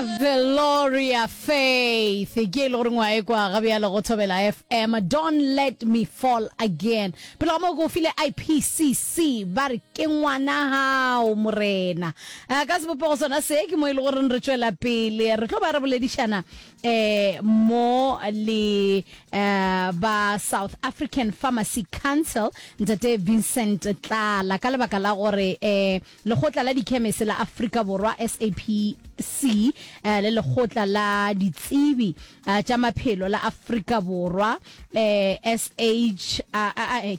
Veloria Faith ke e le goreng wa ekwa ga bjalo go Thobela FM Don't Let Me Fall Again pele ga moo ke o file IPCC ba re ke ngwana gago morena Eh, ka sebopego sona se ke mo e le goreng re tšwela pele re tlo ba re boledišana eh mo le eh ba South African Pharmacy Council ntate Vincent Tlala ka lebaka la gore eh Lekgotla la Dikhemese la Afrika Borwa, SAPC, le Lekgotla la Ditsebi tša Maphelo la Afrika Borwa, SH,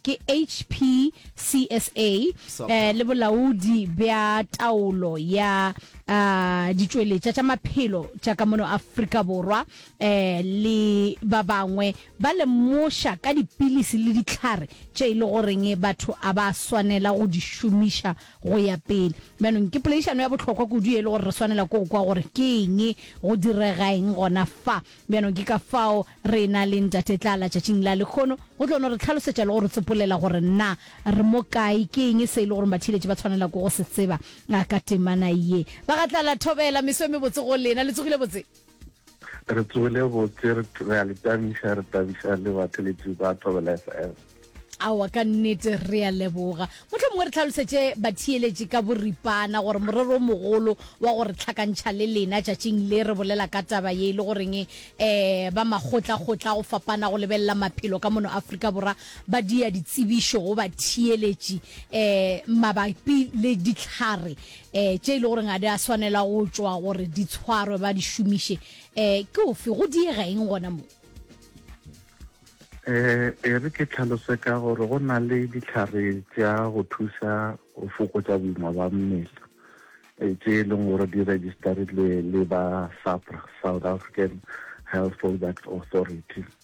ke HPCSA, le Bolaodi bja Taolo ya Ditšweletša tša Maphelo tša ka mono Afrika Borwa le ba bangwe Ba lemoša ka dipilisi le dihlare tše e le goreng batho a ba swanela go di šomiša go ya pele. Bjanong ke poledišano ya bohlokwa kudu ye e le gore re swanela ke go kwa gore ke eng, go direga eng gona fa. Bjanong ke ka fao re ena le Ntate Tlala tšatšing la lekgono, go tlo no re hlalosetša le go re tsopolela gore na re mo kae, ke eng se e le gore batheeletši ba tshwanela ke go se tseba ka temana ye. Ba ga Tlala, thobela, meso e mebotse go lena. Le tsogile botse? re tsogile botse re a le tabiša re tabiša le batheletši ba thobela fm awa ka nnete re a leboga motlho mongwe re tlhalosetše batheeletši ka boripana gore morero o mogolo wa gore tlhakantšha le lena tšatšing le re bolela ka taba ye e le goreng um eh, ba makgotlakgotla go fapana go lebelela maphelo ka mono afrika borwa ba dia ditsebišo go batheeletši um mabapi le ditlhare e tše e le goreng ga di a swanela go tšwa gore di tshwarwe ba di šomiše e ke ofe go diega eng gona mo e e re ke tlhalose ka gore go na le ditlhare tša go thusa go fokotša boima ba mmele e tše e leng gore di registerilwe le ba SAHPRA South African Health Products Authority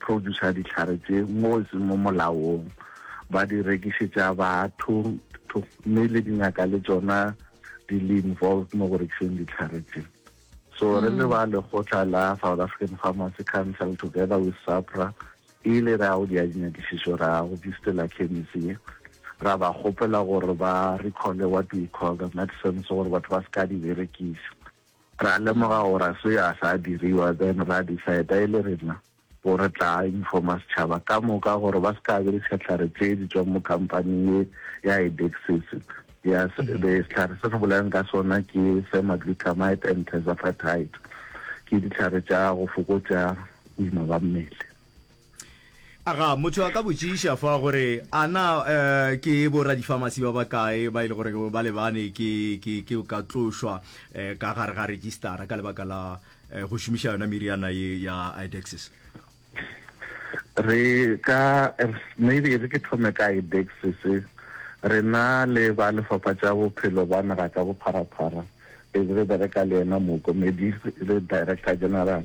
producer ditlhare tse mo e seng mo molaong ba di rekišetša batho mme le dingaka le tsona di le involved mo go rekiseng ditlhare tse so re le mm. ba lekgotla la south african pharmacy council together with sapra e ile ra go dia dinyakišišo ra go distela chemisi ra ba kgopela gore ba recole what we call the medicines gore batho ba se ka di berekisa Ra lemoga gore a se yo a sa diriwa, then ra decida e le rena go re tla informa setšhaba ka moka gore ba se ka be le sehlare tše di tswang mo kampaning ye ya Idexis. Ya sehlare se re bolayang ka sona ke semagluthamide and terzepatide, ke dihlare tša go fokotša boima ba mmele. aga motho a ka botšiša fa gore a na um ke bo radifamasi ba bakae ba e le gore ba lebane ke ka tlošwa um ka gare ga registara ka lebaka la um go šomiša yona meriana ye ya idexis re ka maybe re ke thome ka idexis re na le ba lefapha tša bophelo ba naga ka bopharaphara e re bereka le yena mookomedi le director general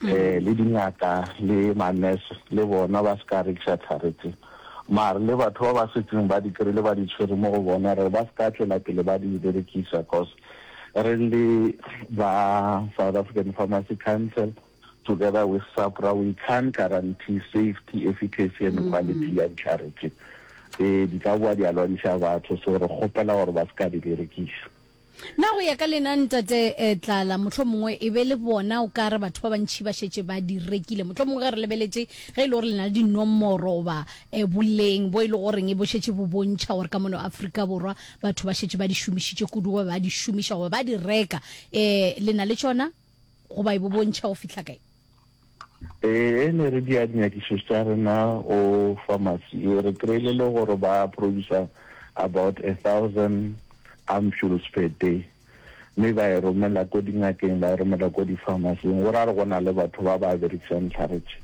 le dingaka le ma-nurse le bona ba se ka rekiša tlhare tse, mare le batho ba ba setseng ba di kry-ile ba di tshwere mo go bona gore ba se ka tšwela pele ba di berekisa cos re le ba South African Pharmacy Council together with SAHPRA we can't guarantee safety, efficacy and quality ya ditlhare tse. Ee, di ka boa di a lwantšha batho so re kgopela gore ba se ka di berekiša. Na go ya ka lena, Ntate Tlala, mohlomongwe e be le bona o ka re batho ba bantši ba šetše ba di rekile? Mohlomongwe ge re lebeletše ge e le gore le na le dinomoro goba boleng bo e le goreng e bo šetše bo bontšha gore ka mono Afrika Borwa batho ba šetše ba di šomišitše kudu goba ba di šomiša goba ba di reka, le na le tšona? goba e bo bontšha go fihla kae? Ee, ne re dia dinyakišo tša rena go pharmacy. Re kry-ile le gore ba producer about a thousand ampules per day, mme ba e romela ko dingakeng, ba e romela ko di-pharmacy-ing. Go ra re go na le batho ba ba berekisang dihlare tše.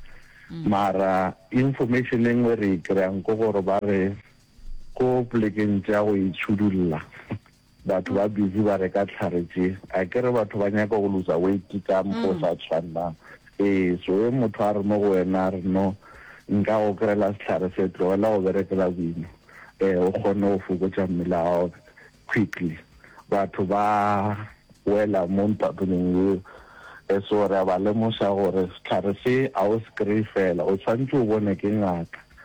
Mm. Mara information e nngwe re e kry-ang ke gore ba re ko polekeng tša go itshudulla Batho ba busy ba reka tlhare tše. Akere batho ba nyaka go looser weight ka mokgwa o sa tshwanang. Ee, so ge motho a re mo go wena a re no, nka go kry-ela sehlare se, tlogela go berekela boima um o kgone go fokotša mmele wa gago quickly. Batho ba wela mo ntwatoneng yeo. Um so re a ba lemoša gore sehlare se ga o se kry-e fela, o tshwanetse o bonwe ke ngaka.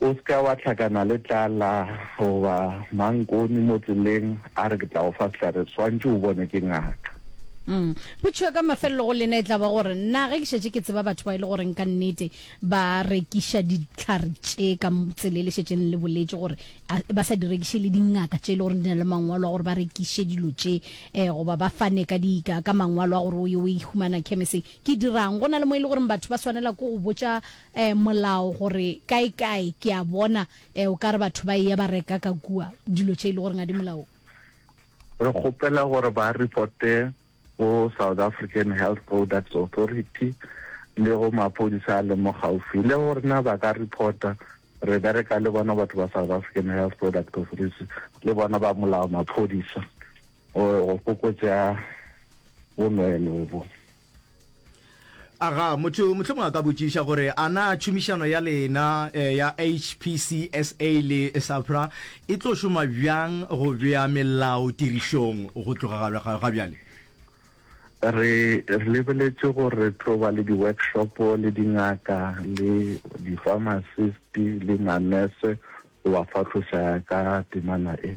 O se ka wa hlakana le tlala goba mankoni mo tseleng a re ke tla go fa sehlare, swantše o bonwe ke ngaka. Umm. Potšo ka mafelelo go lena e tla ba gore, Na ge ke šetše ke tseba batho ba e le goreng ka nnete ba rekiša dihlare tše ka tsela e le šetšeng le le boletše gore a ba sa di rekiše le dingaka tše e le goreng di na le mangwalo a gore ba rekiše dilo tše um goba ba fane ka di ka mangwalo a gore o ye o e humana khemeseng? Ke dira'ng? Go na le mo e le goreng batho ba swanela ke go botša e, molao gore kaekae, ke a bona e, o ka re batho ba eya ba reka ka kua dilo tše e le goreng ga di molaong. Re kgopela gore ba reporte go South African Health Products Authority le go maphodisa a leng mo gaufi le go rena. Ba ka reporta, re bereka le bona batho ba South African Health Products Authority le bona ba molao, maphodisa, go fokotša bonweenwee bo. aga motho motlhomo a ka botšiša gore a na tšhomišano ya lena eh, ya hpcsa le safra e tlo šoma bjang go bea melao tirišong go tloga ga bjale re re lebeletše gore re tlo ba le di-workshop le dingaka le di-pharmacist le manese go ba fahlosa ka temana e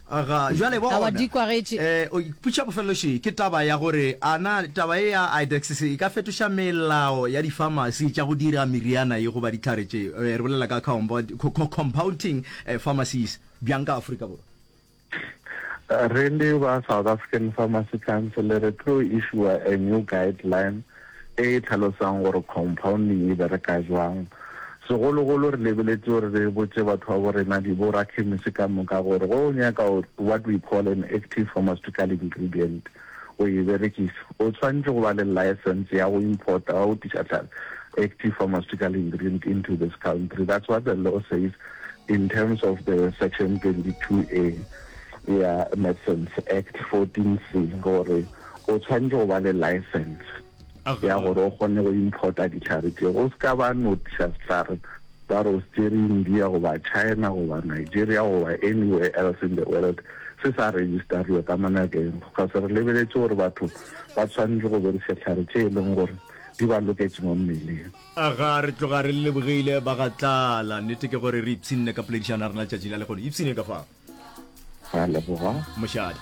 Ga jwale bona, Awa, di kwagetše. e, o ipotša bofelelošii, ke taba ya gore a na taba ye ya Idexis e ka fetoša melao ya difamasi tša go dira meriana ye goba dihlare tše, e, re bolela ka compound, co, co, compounding e, pharmacies, bjang ka Afrika Borwa? Re le ba South African Pharmacy Council re tlo issuer a new guideline e e tlhalosang gore compounding e bereka jwang. Segologolo re lebeletše gore re botše batho ba bo rena, diborakhemisi ka moka, gore ge o nyaka what we call an active pharmaceutical ingredient go e berekiša, o swanetše go ba le licence ya go importa, ya go tliša tlhahlo, active pharmaceutical ingredient into this country. That's what the law says in terms of the section 22A ya Medicines Act 14C gore o tshwanetse go ba le license ya gore o kgone go importa ditlhare tse go se ka ba notiša setlhare ba re o se tsere india goba china goba nigeria goba anywhere else in the world se sa registerwe ka monageng because re lebeletse gore batho ba tshwanetse go bereša tlhare tse e leng gore di ba loketse mo mmeleng aga re tloga re lebogile ba ga tlala nnete ke gore re ipshinne ka poledišano ya rena letšatši la lekgono ipshineng ka fa a leboga mošadi